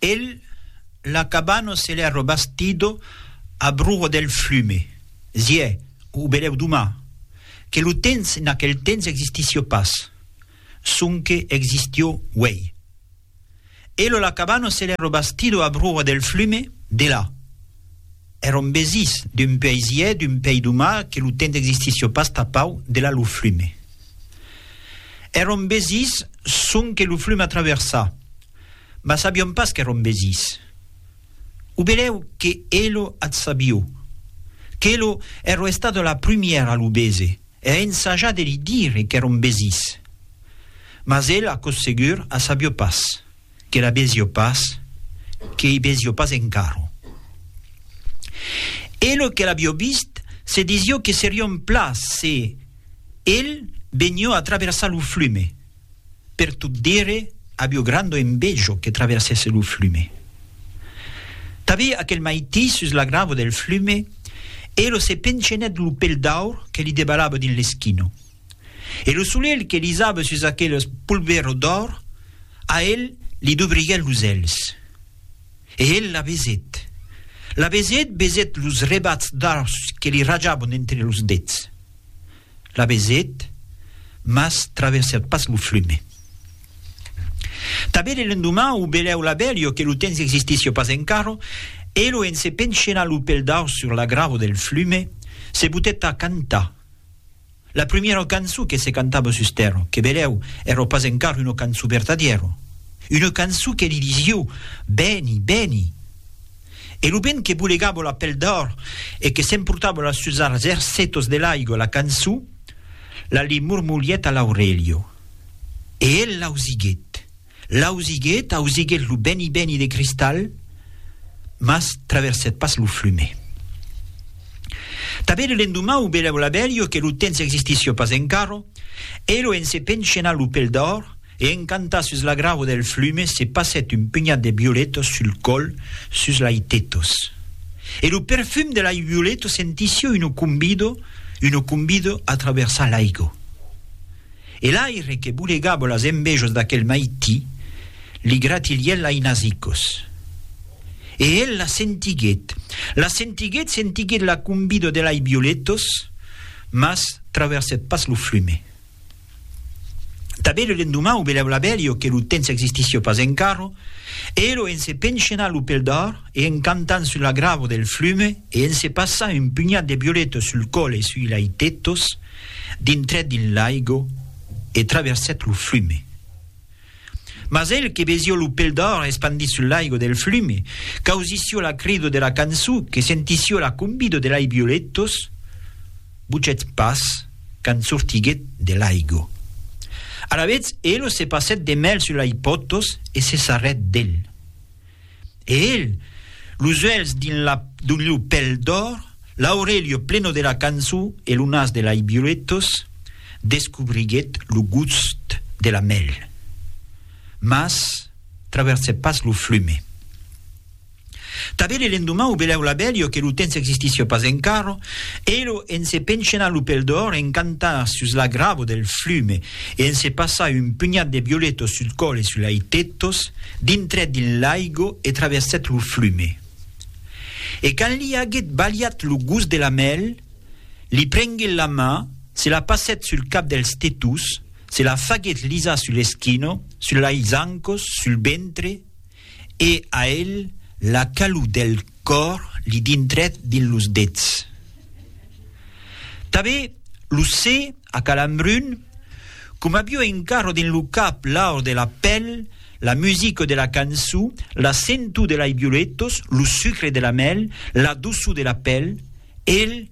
El la cabano se l'è robastido a bruho del flume. Ziè, o belèu doma, que lo tens en aquel tens existissió pas, sonque existió uèi. El o la cabano se l'è robastido a bruho del flume, de la. È rombesís d'un puèi ziè, d'un puèi doma, que lo tens existissió pas tapau de la lo flume. È rombesís sonque lo flume a traversar. mas sabion pas qu'èron besís. O belèu que elo ath sabio, qu'elo ero estat la prumièra a lo bese e a ensajar de li dire qu'èron besís. Mas el, aquò's segur, a sabio pas, que la besio pas, que i besio pas encaro. Elo que l'abio vist se disio que serion pla se el benio a traversar lo flume, Per tot dire, avió grando envejo que traversèsse lo flume. Tabé aquel maití sus la gravo del flume, Elo se pencenèt lo pel d'aur que li debalava dins l'esquino. E lo solelh que lisava sus aqueles polvero d'aur, a el li dubriguèt los èlhs. E el la besèt. La besèt, besèt los rebats d'aurs que li rajavan entre los dets. la vesèt, mas traversèt pas lo flume. Tanben e l'endoman o belèu l'abelho que lo temps existisio pas encara, elo en se penchenar lo pel daus sur l'agravo del flume, se butèt a cantar. La prumièra canço que se cantava sus tèrra, que belèu èra pas encara una canço vertadièra, una canço que li disio, Beni, beni! E lo vent que bolegava la pel d'òr e que s'emportava las sus arzèrs setos de l'aigua la cançó, la li mormolhèt a l'aurelha. E el l'ausiguèt, l'ausiguèt, ausiguèt lo bèni bèni de cristal, mas traversèt pas lo flume. Tanben l'endomau velèu la velha que lo temps existissiá pas encara, e lo en se penchenar lo pel d'òr E encantat sus la gravo del flume se passèt un penhat de violetos sul còl sus lai tetos. E lo perfum de lai violeto sentisio uno cumbido, uno cumbido a traversar l'aigo. E l'aire que bolegavo las envejos d'aquel maití li gratilièt lai nasicos. E el la sentiguèt, la sentiguèt, sentiguèt la cumbido de lai violetos, mas traversèt pas lo flume. Tanben lo lendoman o belèu labèlio que lo temps existissió pas encarro, e elo en se penchenar lo pel d'òr e en cantant sul agravo del flume e en se passar un punhat de violetos sul còl e sui lai tetos, dintrèt dins l'aigo e traversèt lo flume. Mas el que vesió lo pel d'òr espandit sul laigo del flume, qu'ausissió la crido de la cançó, que sentissió la convido de lai violetos, buchèt pas quand sortiguèt de laigo. Alavetz elo se passèt de mèl sul lai potos e se sarrèt del. E el, los uèlhs dins la d'oliu pel d'òr, l'aurelio pleno de la cançon e lo nas de lai violetos, descobriguèt lo gust de la mèl. Mas traversèt pas lo flume. Tanben e l'endoman o belèu l'abelio que lo temps existissia pas encara, elo en se penchena lo pel d'òr en cantar sus la gravo del flume, e en se passar un punhat de violetos sul còl e sul lai tetos, dintrèt dins l'aigo e traversèt lo flume. E quand li aguèt balhat lo gust de la mèl, li prenguèt la man, se la passèt sul cap dels tetos, se la faguèt lisar sul eschino, sul lai zancos, sul ventre, E a el la calor del còr li dintrèt dins los dets. Tanben lo se a calambrun, coma avió encara dins lo cap l'aur de la pèl, la musica de la cançó, la sentor de lai violetos, lo sucre de la mèl, la doçor de la pèl, el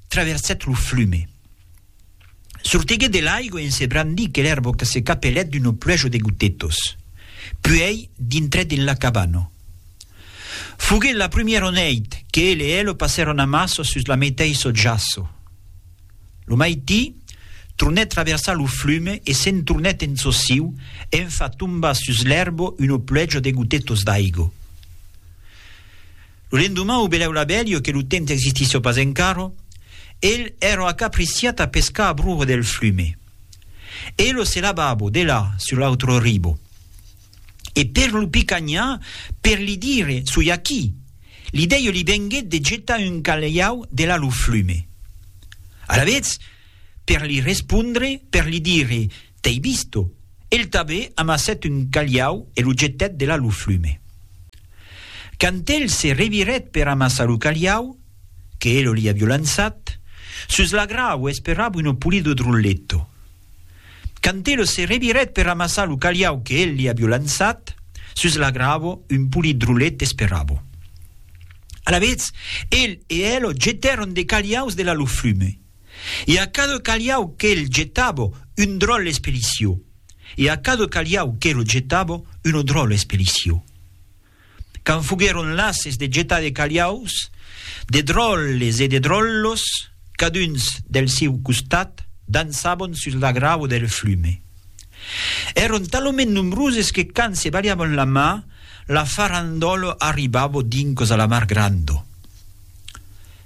traversèt lo flume. Sortiguèt de l'aigua en se brandir que l'èrbo que se capelèt d'uno pluejo de gotetos. Puèi dintrèt en la cabana. Foguèt la prumièro nèit que el e elo passèron amasso sus la meteissò jaço. Lo maití, tronèt traversar lo flume e se'n tornèt en çò siu en far tombar sus l'èrbo uno pluejo de gotetos d'aigo. Lo lendoman o belèu la bèlio que lo temps existissió pas encaro, el èrò acapriciat a pescar a broho del flume. E lo se lavabo, de là, sur l'autro ribo. E per lo picanhar, per li dire, soi aquí, l'idèio li venguèt de getar un calhau de là lo flume. Alavetz, per li respondre, per li dire, T'ei visto! El tabé amassèt un calhau e lo jetèt delà lo flume. Quand el se revirèt per amassar lo calhau, que elo li avió lançat, sus la grau esperava uno pulido drulletto. Quand elo se revirèt per amassar lo calhau que el li avió lançat, sus la gravo un pulit drullet esperava. Alavetz, el e elo jetèron de calhaus delà lo flume. e a cada calhau qu'el jetava un dròlle espelicio, e a cada calhau qu'ero jetava una dròlle espelicio. Quand foguèron lases de jetar de calhaus, de dròlles e de dròllos, caduns del siu costat, dançavan sus la grava del flume. Èron talament nombroses que quand se balhavan la man, la farandòla arribava dincas a la mar granda.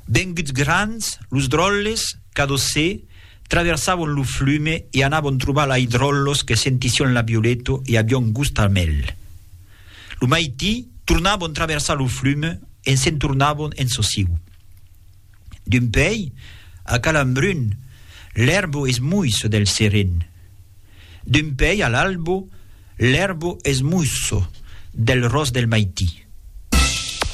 Venguts grands, los dròlles, cadosè, traversavon lo flume e anavon trobar lai dròllos que sentission la violeto e avion gust al mèl. Lo maití, tornavon traversar lo flume e se'n tornavon en sosiu. D'un pei, a Calambrun, l'èrbo es muisso del seren. D'un pei a l'albo, l'èrbo es muisso del ros del maití.